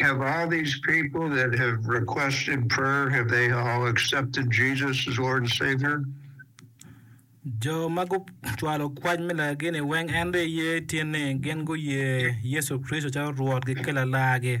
Have all these people that have requested prayer have they all accepted Jesus as Lord and Savior? Jo ma gucwalo kwac me lagagini weng en dong iye tye ni gin guye Yecu Kricito calo Rwotgi ki Lalargi.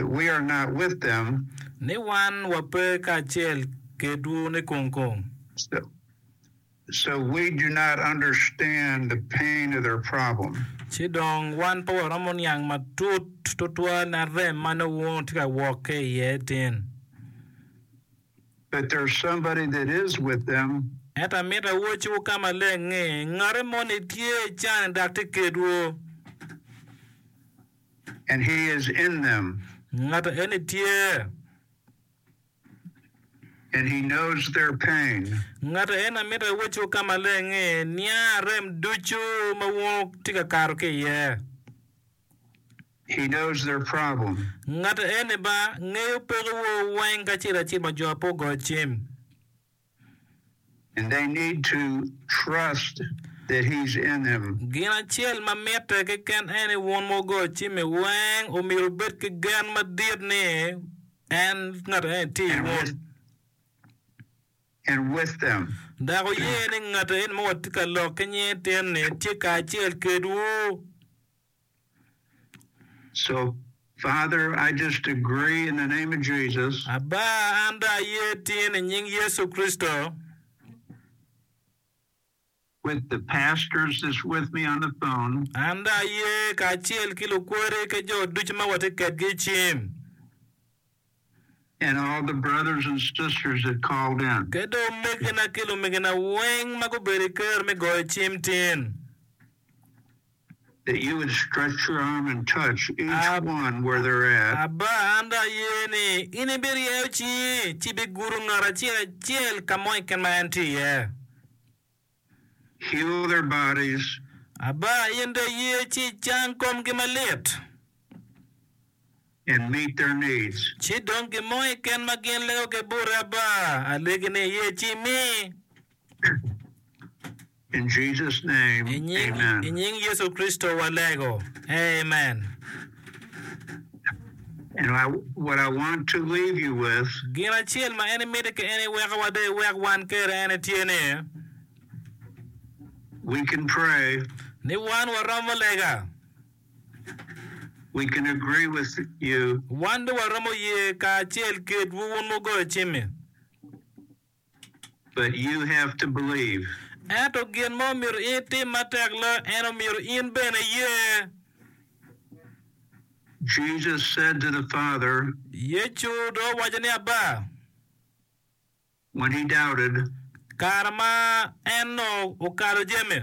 We are not with them. Ni wan wape kacel kedwu nikong kong. So, so we do not understand the pain of their problem. Ci dong wan pe waromo niang matut tutwal na rem ma nongo tye ka wok ki iye tin. but there's somebody that is with them. Ento amito awocciwu ka maleng ni, Ngate moni tye i can-ni dok tye kedwu. And he is in them. Ngate eni tye. And he knows their pain. Ngate eni amito awocciwu ka maleng ni, niang rem ducu ma wun wutye ka kato ki iye. He knows their problem. Ngat eni ba ngeyo peko wo weng kacel acel ma jo ape ogoyo cim. And they need to trust that he's in them. Gin acel ma mitte keken en ni wun ma wugoyo cim-mi weng omyero wubed ki gen madit ni en, ngat eni, tye i wun. And with them. Dok wuye ni ngat eni ma watye ka lok ki nyinge tyen-ni tye kacel kedwu. Aba, an dong aye tin i nying Yecu Kricito. An dong aye kacel ki lukwodi ki jo ducu ma watye kedgi i cim. and all the brothers and sisters that called in. Ki dong omegina ki lumegina weng ma gubedo i ker me goyo cim tin. That you would stretch your arm and touch each Ab, one where they're at. Abba, an dong aye ni in ibiryeyo cingi ci ibigudo ngat acel acel ka mo keken ma en tye iye. heal their bodies. Aba in do iye ci icang komgi malit. And meet their needs. Ci dong gin mo keken ma gin lego ki bute Aba, alegi ni iye ci imi. In Jesus name, amen. I nying Yecu Kricito walego, Amen. Gin acel ma en miti ka en iwekowa dok iwek wan kede en tye ni, ni wan waromo lega. Wan dong waromo ye kacel kedwu wun mugoyo cim-mi. but you have to believe. Ento gin ma omyero in itim matek lok en omyero in bene iye. Jesus said to the Father. Yecu dong owaco ni Abba. When he doubted. Kare ma en nongo okalo jami.